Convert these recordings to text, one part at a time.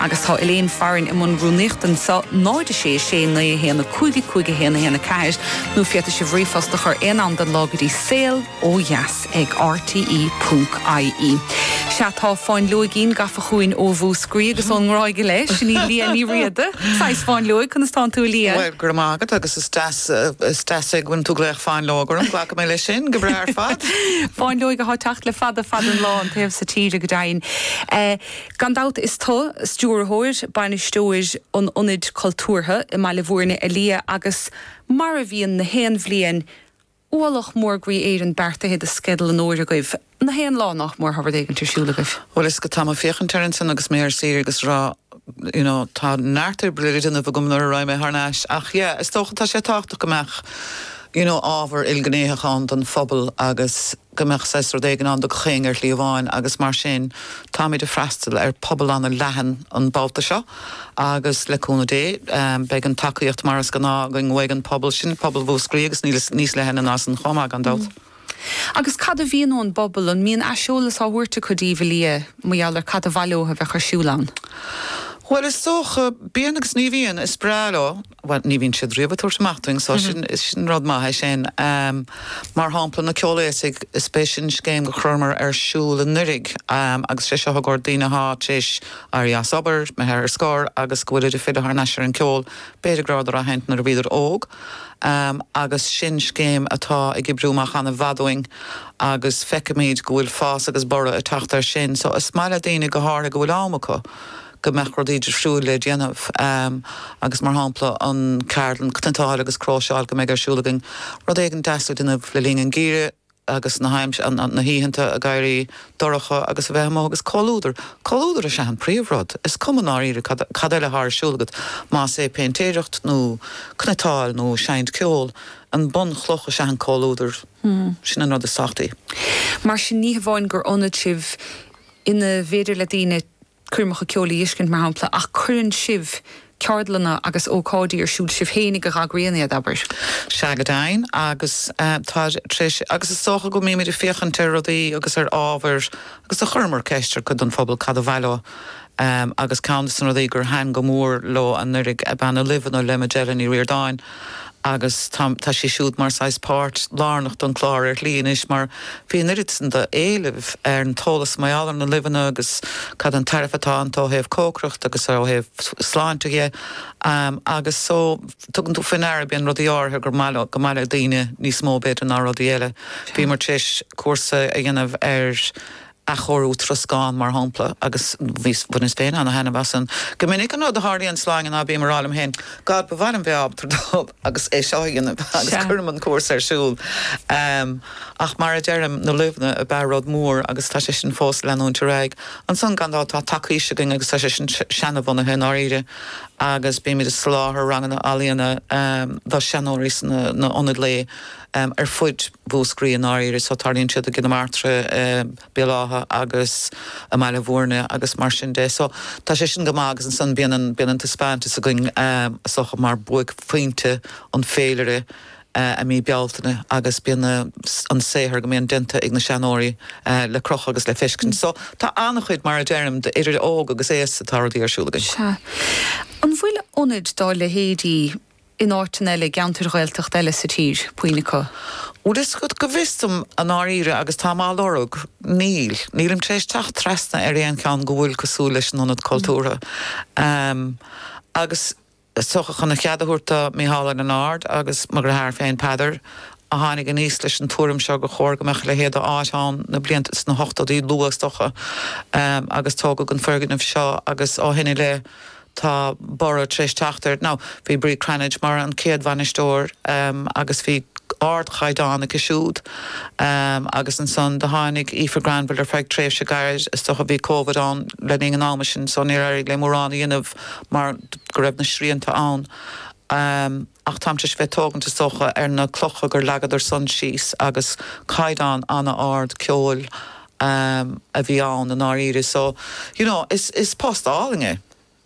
Agus tá Elaine Farren i mbun rúnaíochta anso, 0 6 6 9 1 5 5 1 1 4, nó féadfaidh sibh ríomhphost a chur aon am den lá go dtí saol ó dheas ag rte ponc ie. Sea, tá fáinleoigín gafa chugainn ó Mhúscraí agus ón nGráig i leith, sin í Liadh Ní Riada, saghas fáinleoig, conas tánn tú a Liadh? Bhuel, go raibh maith agat agus is deas, is deas é go bhfuil tú ag glaoch fáinleog orm, glacfaidh mé leis sin go breá ar fad. Fáinleoig athá teacht le fada fada an lá, an taobh so tíre go deimhin. Gan dabht is tú, stiúrthóir, bainisteoir an Ionaid Cultúrtha i mBaile Bhúirne a Liadh agus, mar a bhíonn na haon bhliain, ualach mór groí Éireann beartaithe do Sceideal an Fhómhair agaibh, na haon lá nach mór ábhar éigint ar siúl agaibh. Bhuel, is dócha tá mé ag féachaint air ansan agus mé ar saoire agus a rá you know tá neart oibre le déanamh agam nuair a raghaidh mé thar n-ais ach yeah is dócha tá sé tábhachtach go mbeadh you know ábhar ilghnéitheach ann don phobal agus go mbeadh saghas rud éigin ann do gach éinne ar shlí amháin agus mar sin táimid ag freastal ar phobal an-leathan an babhta seo agus le cúnamh Dé beidh an tacaíocht mar is gnáth againn uaidh an pobal sin, pobal Mhúscraí agus níos leithne ná san chomh maith gan dabht. Agus cad a bhíonn ón bpobal, an mbíonn aiseolas á thabhairt acu daoibh a Liadh mar gheall ar cad ba mhaith leo a bheadh ar siúl ann? Bhuel is dócha, bíonn agus ní bhíonn, is breá leo bhuel, ní bhíonn siad riamh ag tabhairt amach dúinn so sin, sin rud maith é sin. Mar shampla, na Ceolaosaigh, is é sin scéim gur chuireamar ar siúl anuraidh agus sé seo i gcomhair daoine athá tar éis éirí as obair, nó athá ar scor, agus go bhfuilid ag filleadh thar n-ais ar an ceol, b'fhéidir go rabhadar á sheinnt nuair a bhíodar óg agus sin scéim atá ag oibriú amach ana mhaith dúinn agus feicimid go bhfuil fás agus borradh ag teacht ar sin so is maith le daoine go h-áirithe go bhfuil am acu go mbeadh rudaí difriúil le déanamh, agus mar shampla an ceardlann 'Cniotáil agus Cróiseáil' go mbeidh ar siúl againn rud éigin deas le déanamh le linn an geimhridh agus na hoícheanta ag éirí dorcha agus a bheith amuigh agus comhluadar, comhluadar is ea an príomh rud, is cuma i ndáiríre cad eile atá ar siúl agat, más é péintéireacht nó cniotáil nó seinnt ceol, an bunchloch is ea an comhluadar, sin an rud is tábhachtaí. Mar sin ní hamháin gur ionad sibh ina bhféidir le daoine coirmeacha ceoil a dh'fheiscint, mar shampla, ach cuireann sibh ceardlanna agus ócáidí ar siúl sibh féinig a dh'eagraíonn iad, abair. Sea, go deimhin, agus tá tar éis, agus is dócha go mbímid ag féachaint ar rudaí agus ar ábhair agus do chuireamar ceist ar cuid den phobal cad ba mhaith leo agus ceann de na rudaí gur thaitin go mór leo anuraidh ab ea na luibheanna le Majella Ní Ríordáin. Agus tá, tá sé siúd mar saghas páirt lárnach don clár ar shlí anois mar bhí an oiread san do éileamh ar an t-eolas mar gheall ar na luibheanna agus cad an tairbhe atá iontu ó thaobh cócaireacht agus ó thaobh sláinte dhe agus so tugann tú faoi ndeara go mbíonn rudaí áirithe gur maith leo, go maith le daoine níos mó b'fhéidir ná rudaí eile. Bhíomar tar éis cúrsa a dhéanamh ar. athchóiriú troscán, mar shampla, agus bhaineas féin an-thaitneamh as san. Go minic an rud a tharlaíonn, Sláine, ná bím ag rá liom féin, 'God, ba mhaith liom bheith ábalta dul agus é seo a dhéanamh' agus Sea. cuirim an cúrsa ar siúl. Ach mar a deirim, na luibheanna ab ea rud mór agus tá sé sin fós ag leanúint ar aghaidh. Ansan, gan dabht, tá tacaois againn agus tá sé sin seana-bhunaithe i ndáiríre agus bímid ag soláthar ranganna ealaíona do sheanóirí sna hionaid lae ar fud Mhúscraí i ndáiríre, so tarlaíonn siad i gCill na Martra, i Béal Átha agus i mBaile Bhúirne agus mar sin de. So tá sé sin go maith agus ansan bíonn an, bíonn an taispeántas againn is dócha mar buaicphointe an féilire i mí Bealtaine agus bíonn an saothar go mbíonn déanta ag na seanóirí le crochadh agus le feiscint. So tá ana-chuid, mar a deirim, d'idir óg agus aosta tá rudaí ar siúl againn. Sea. An bhfuil ionaid dá leithéidí? in áiteanna eile, i gceantair Ghaeltachta eile sa tír, puinn acu. Bhuel, is go bhfios dom, i ndáiríre, agus táim á lorg, níl. Nílim tar éis teacht trasna ar aon cheann go bhfuil cosúil leis an ionad cultúrtha. Agus is dócha, chun a cheart a thabhairt do Micheál Ó Lionáird agus mo dhreatháir féin, Peadar, a tháinig aníos leis an tuairim seo, gur chóir go mbeadh a leithéid de áit ann na blianta, sna hochtóidí luath is dócha, agus tógadh an foirgneamh seo agus ó shin i leith, Tá borradh tar éis teacht air now. Bhí Bríd Cranitch mar an chéad bhainisteoir agus bhí ardchaighdeán aici siúd agus ansan do tháinig Aoife Granville ar feadh tréimhse gairid, is dócha bhí Covid ann le linn an ama sin so níor éirigh léi mórán a dhéanamh mar go raibh na srianta ann. ach táimse ag tógaint is dócha ar na clocha gur leagadar-san síos agus caighdeán ana-ard ceoil a bhí ann i ndáiríre so you know is post álainn é.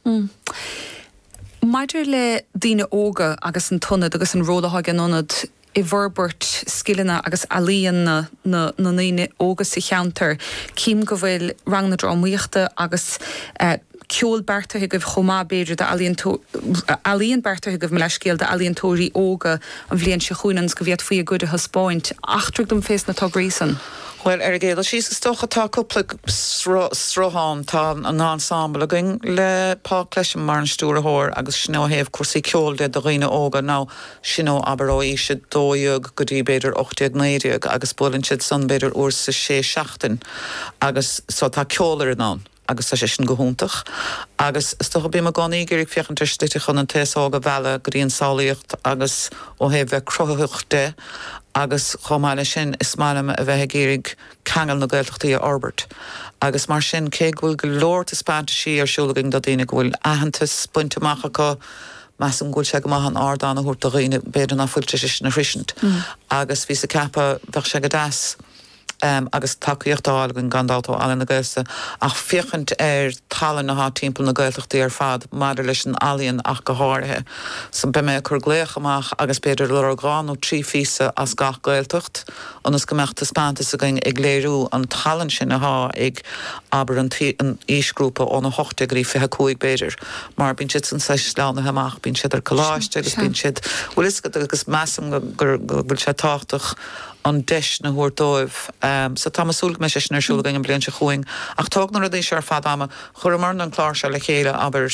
Mm. Maidir le daoine óga agus an t-ionad agus an ról atá ag an ionad i bhforbairt scileanna agus ealaíon na na ndaoine óga sa cheantar, cím go bhfuil ranganna drámaíochta agus eh, ceol beartaithe agaibh chomh maith, b'fhéidir, d'ealaíon beartaithe agaibh, mo leathscéal, d'ealaíontóirí óga an bhliain seo chugainn ionas go bhféadfaí a gcuid a thaispeáint. Eachtraigh dom fés na tograí san. Bhuel, ar an gcéad dul síos, is dócha, tá cúpla sruth ann. Tá an ensemble againn le Paul Clesham mar an stiúrthóir agus sin ó thaobh cúrsaí ceoil de do dhaoine óga, now, sin ó, abair, ó aois 12 go dtí, b'fhéidir, 18, 19 agus buaileann siad san, b'fhéidir, uair sa 6 seachtain agus, so, tá ceolfhoireann ann. agus tá sé sin go hiontach agus is dócha, bím i gcónaí ag iarraidh féachaint ar shlite chun an t-aos óg a mhealladh go dtí an samhlaíocht agus ó thaobh bheith cruthaitheach de agus chomh maith leis sin, is maith liom a bheith ag iarraidh ceangail na Gaeltachtaí a fhorbairt agus mar sin, cé go bhfuil go leor taispeantaisí ar siúl againn do daoine go bhfuil aitheantas bainte amach acu, measaim go bhfuil sé go maith an ardán a thabhairt do dhaoine b'fhéidir ná fuil tar éis sin a shroisint agus bhíos ag ceapadh bheadh sé go deas. agus tacaíocht á fháil againn gan dabht ó Ealaín na Gaeltachta, ach féachaint ar tallann athá timpeall na Gaeltachtaí ar fad, maidir leis an ealaíon ach go háirithe. So, beidh mé ag cur glaoch amach agus b'fhéidir lorg dhá nó trí phíosa as gach Gaeltacht ionas go mbeadh taispeantas againn ag léiriú an tallann sin athá ag, abair, an aoisghrúpa ón 18 go dtí 25 b'fhéidir, mar bíonn siad san saghas sleamhnaithe amach, bíonn siad ar coláiste agus bíonn siad, bhuel, is, agus measaim go bhfuil sé tábhachtach, an deis a thabhairt dóibh. So tá mé súil go mbeidh sé sin ar siúl againn an bhliain seo chugainn. Ach tógann na rudaí seo ar fad ama. Chuireamarna an clár seo le chéile, abair,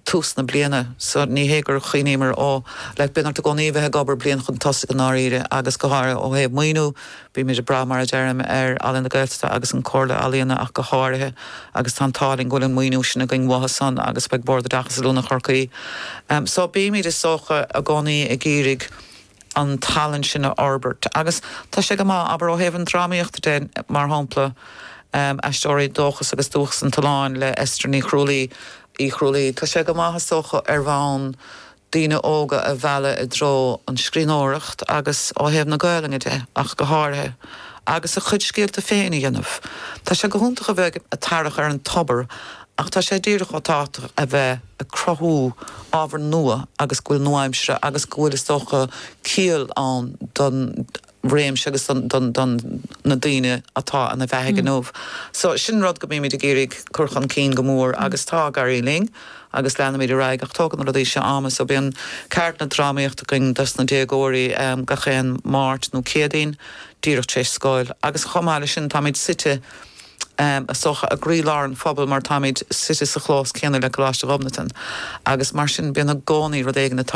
tús na bliana. So ní hé gur chuimhníomar, ó, like, bíonn ort i gcónaí a bheith ag obair bliain chun tosaigh i ndáiríre agus go háirithe ó thaobh maoiniú, bímid ag brath, mar a deirim, ar Ealaín na Gaeltachta agus an Comhairle Ealaíon ach go háirithe agus tá an t-ádh linn go bhfuil an maoiniú sin againn uathu san agus ag Bord Oideachais is Oiliúna Chorcaí. So bímid, is dócha, i gcónaí ag iarraidh, an tallann sin a fhorbairt agus tá sé go maith, abair, ó thaobh an drámaíochta de, mar shampla, Aisteoirí, Dóchas agus Dúchas an tSuláin le Esther Ní Chrualaoi, Uí Chrualaoi, tá sé go maith, is dócha, ar bhonn daoine óga a mhealladh i dtreo an scríbhneoireacht agus ó thaobh na Gaolainne de ach go háirithe agus a gcuid scéalta féin a dhéanamh. Tá sé go hiontach a bheith ag tarrach ar an tobar Ach tá sé díreach chomh tábhachtach a bheith ag cruthú ábhar nua agus go bhfuil nua-aimseartha agus go bhfuil, is dócha, ciall ann don réimse agus don, don, na daoine atá ina bheathaigh inniu. So, sin rud go mbímid ag iarraidh cur chun cinn go mór agus tá ag éirí linn agus leanfaimid ar aghaidh ach tógann na rudaí seo ama. So, bíonn ceardlanna drámaíochta againn dos na déagóirí gach aon Máirt nó Céadaoin díreach tar éis scoil agus chomh maith leis sin táimid suite, is dócha, i gcroílár an phobail mar táimid suite sa chlós céanna le Coláiste Ghobnatan agus mar sin bíonn i gcónaí rud éigin a